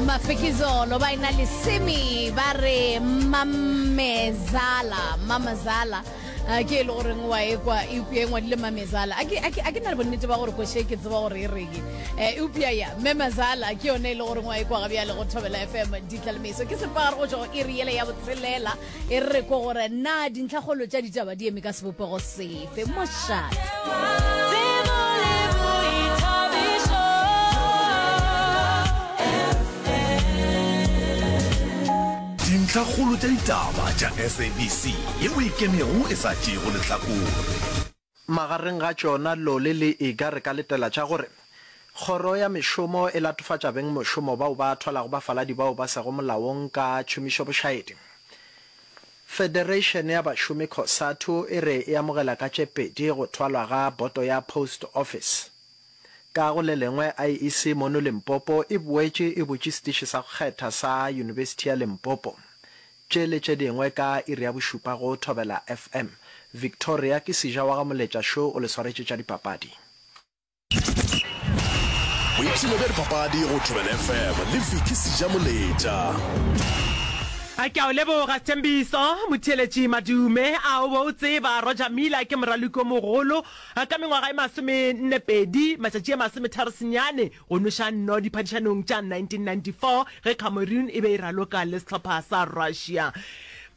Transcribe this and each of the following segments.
mafikizolo ba ena lesemi ba re mamezala mamazala a ke e le goreng wa ekwa eupša e ngwadile mamezala a ke na le bonnete ba gore kwešhe ke tseba gore e reng eupša ya memazala ke yone e le goreng wa ekwa ga bjale go thobela fm ditlalemeso ke sepagare go tšwa go iri yele ya botshelela e re ko gore na dintlhakgolo tša ditaba di eme ka sebopego sefe mošat dintlhakgolo tša ditaba tša sabc ye o ikemego e sa tšeego lehlakore Magareng ga tšona, Lolly le Iga re ka letela tša gore, Kgoro ya Mešomo e latofatša beng mošomo bao ba thwalago bafaladi bao ba sego molaong ka tšhomišobošaedi. Federation ya Bašomi Cosatu e re e amogela ka tše pedi go thwalwa ga Boto ya Post Office. Ka go le lengwe, IEC mono Limpopo e boetše e butše setiši sa go kgetha sa Yunibesithi ya Limpopo, Tše le tše dingwe ka iri ya bošupa go Thobela FM. Victoria ke Sija wa ga Moletša Show o le swaretše tša dipapadi. Boipshino bja dipapadi go Thobela FM le Vicky Sija Moletša. A ke a o leboga Sthembiso motheeletši madume. A o be o tseba Roger Miller ke moraloki o mogolo ka mengwaga e masome nne pedi matšatši e masometharo senyane Go nweša nno diphadišanong tša 1994 ge Cameroon e be e raloka le sehlopha sa Russia.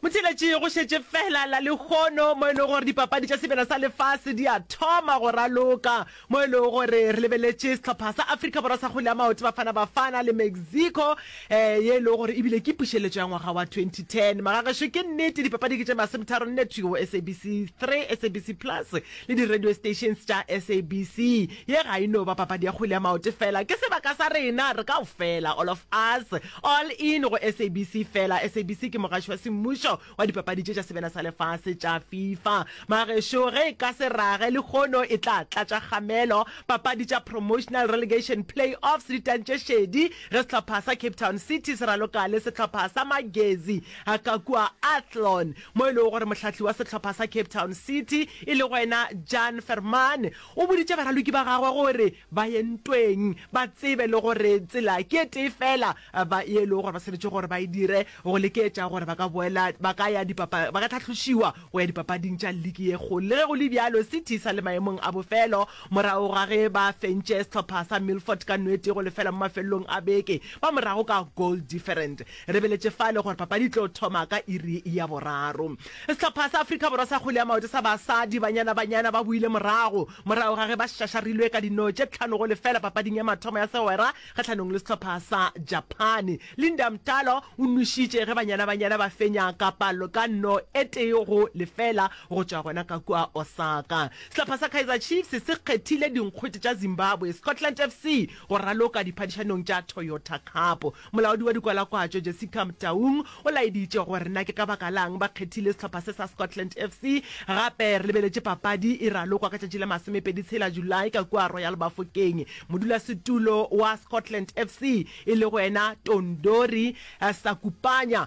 Motšheletše go šetše feela la lehono mo e lego gore dipapadi tša sebjana sa lefase di a thoma go raloka, mo e lego gore re lebeletše sehlopha sa Afrika Borwa sa kgwele ya maoto Bafana Bafana le Mexico, um ye e lego gore e bile ke pušeletšo ya ngwaga wa 2010. Magagešo ke nnete dipapadi ke tše masometharo nne thwi go SABC 3, SABC Plus le di-radio stations tša SABC. Ye ga e no ba papadi ya kgwele ya maote fela, ke sebaka sa rena re kaofela, all of us. All in go SABC fela. SABC ke mogaši wa semmušo wa dipapadi tše tša sebena sa lefase tša Fifa. Magešu ge e ka se rage lekgono e tla tlatša kgamelo. Papadi tša Promotional Relegation Play-offs di tantše šedi ge sehlopha sa Cape Town City se raloka le sehlopha sa Magezi a ka kua Athlone mo e lego gore mohlahli wa sehlopha sa Cape Town City e le go ena Jan Vermaane O boditše baraloki ba gagwe gore ba ye ntweng, ba tsebe le gore tsela ke e tee feela ba ye lego gore ba swanetše gore ba e dire go lekeetša gore ba ka boela ba ka ya dipapa ba ka tlhahlošiwa go ya dipapading tša liki ye kgolo. Le ge go le bjalo, City e sa le maemong a bofelo morago ga ge ba fentše sehlopha sa Milford ka nwete go lefela mo mafelelong a beke ba morago ka goal different. Re beletše fale gore papadi e tlo thoma ka iri ya boraro. Sehlopha sa Afrika Borwa sa kgwele ya maoto sa basadi, Banyana Banyana, ba boile morago morago ga ge ba šašarilwe ka dino tše tlhano go lefela papading ya mathomo ya segwera kgahlanong le sehlopha sa Japane. Linda Mtalo o nwešitše ge Banyana Banyana ba fenya ka palo ka no e tee go lefela go tšwa gona ka kua Osaka. Sehlopha sa Kaizer Chiefs se kgethile dinkgwete tša Zimbabwe Scotland FC go raloka diphadišanong tša Toyota Cup. Molaodi wa dikwalakwatšo Jessica Mtaung o laeditše gore na ke ka baka la'ng ba kgethile sehlopha se sa Scotland FC. Gape re lebeletše papadi e ralokwa ka tšatši la masomepedi tshela Julae ka kua Royal Bafokeng. Modulasetulo wa Scotland FC e lego yena Tondori Sakupanya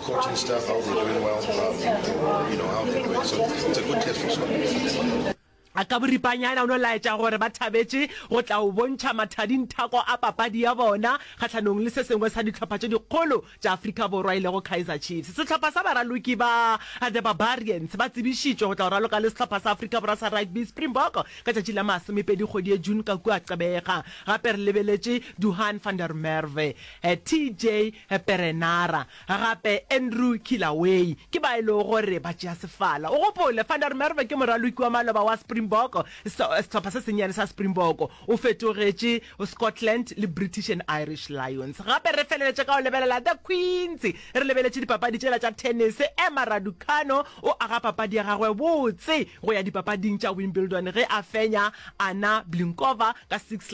Coaching staff, how they're doing well, um, you know, how they're doing. So it's a good test for Scotland. a ka boripanyana o no laetša gore ba thabetše go tla o bontšha mathading thako a papadi ya bona kgatlhanong le se sengwe sa dihlopha tše dikgolo tša afrika borwa e lego kaizer chiefs sehlopha sa baraloki ba the barbarians ba tsebišitšwe go tla o raloka le sehlopha sa afrika borwa sa rugby springbok ka tšatši la masomepedi kgwedi ye june ka kua qebega gape re lebeletše duhan van der merve eh, tj Perenara, gape Andrew Kilaway, ke ba e lego gore ba tšea sefala. O gopole, Van der Merwe ke moraloki wa maloba wa Springbok, sehlopha se sennyane sa Springbok. O fetogetše Scotland le British and Irish Lions. Gape re feleletše ka go lebelela The Queens. Re lebeletše dipapadi tšela tša tennis. Emma Raducanu o aga papadi ya gagwe botse go ya dipapading tša Wimbledon ge a fenya Anna Blinkova ka six.